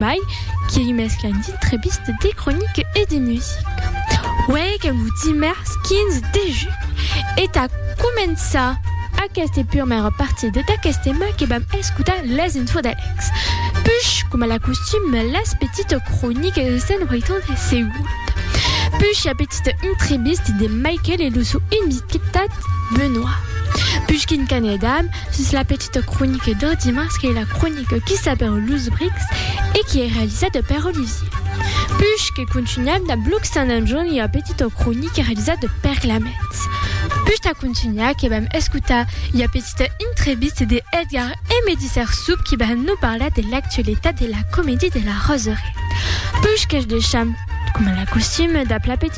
Mai, qui ei mès qu'un ditrèbist de cronica e de musica. Uèi qu'en lo dimèrs 15 de julh e tà començar aquesta purmèra partida d'aquest tèma que vam escotar las infos d'Alex. Push, coma la costum, las petita cronica de Sant Roitan de Segon. Push la petita intrèbist de Michael e lo sou invitat Benoit. Push quin qu'anèdam sus la petita. Esta cronica de dimars qu'ei la cronica qui sap per los brics e qui ei realizada per Olivier Puch que contunham dab Blog Sant Anton ua petita cronica realizada per Clement Puch tà contunhar que vam escotar ua petita intrevista de Edgar Emedi Sersup qui va nos parlar de l'actualitat de la comedie de la Roseraie Puch que'ch deisham coma la costume dab la petita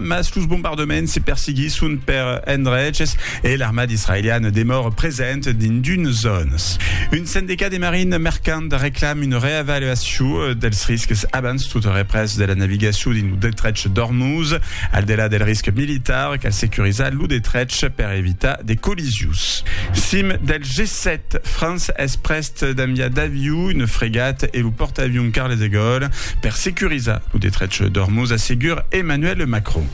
mas los bombardements se persiguisson per endreches e l'armada israeliana demòra present dins d'unes zònas. Un sendicat de marina mercanta reclama una reavaluacion dels risques abans tota represa de la navigacion dins lo detrech d'Ormuz. Al delà del risc militar, cal securizar lo detrech per evitar de collisions. Cim del G7, França es prèsta d'enviar d'aviu una fregat e lo pòrtaavion Charles de Gaulle per securizar lo detrech d'Ormuz, assegur Emmanuel Macron.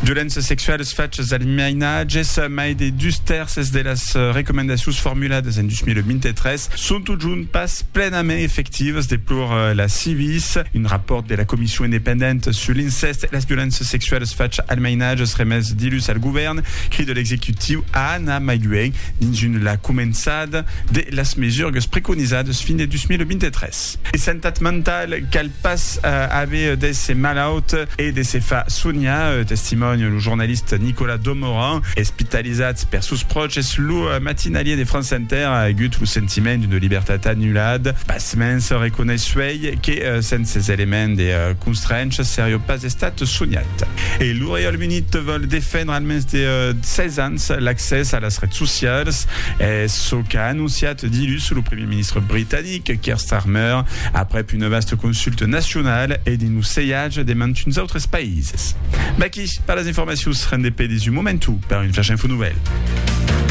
Violéncias sexualas, fachas d'almiainatges, mai de dus tèrces de las recomandacions formuladas en 2023 son totjorn pas plenament efectivas, deplor la Civis. Un rapòrt de la Comission independente sur l'incèst e las violéncias sexualas, fachas almiainatges, remés dilhus al govèrn, crida l'executiu a anar mai luènh dins una la començada. l'eficacitat de las mesurgues preconizadas fin de 2023. De santat mentala, cal pas aver de se malaut e de se far sonhar, testimònia lo jornalista Nicolas Domoran. Espitalizat per sos pròches, lo matinalier de France Inter a agut lo sentiment d'una libertat anulada. Simens reconeissuèi que sens ces elements de constrèncha serió pas estat soniat. E lo Reialme Unit vòl defendre almens de 16 ans l'accès a las rets socialas, es çò qu'a anonciat dilhus lo primièr ministre britanic, Keir Starmer, aprèp una vasta consulta nacionala e dins lo seiatge de mantuns autres païses. Vaquí per las informacions rendepedis un momentu per un Flash Info Nouvèl.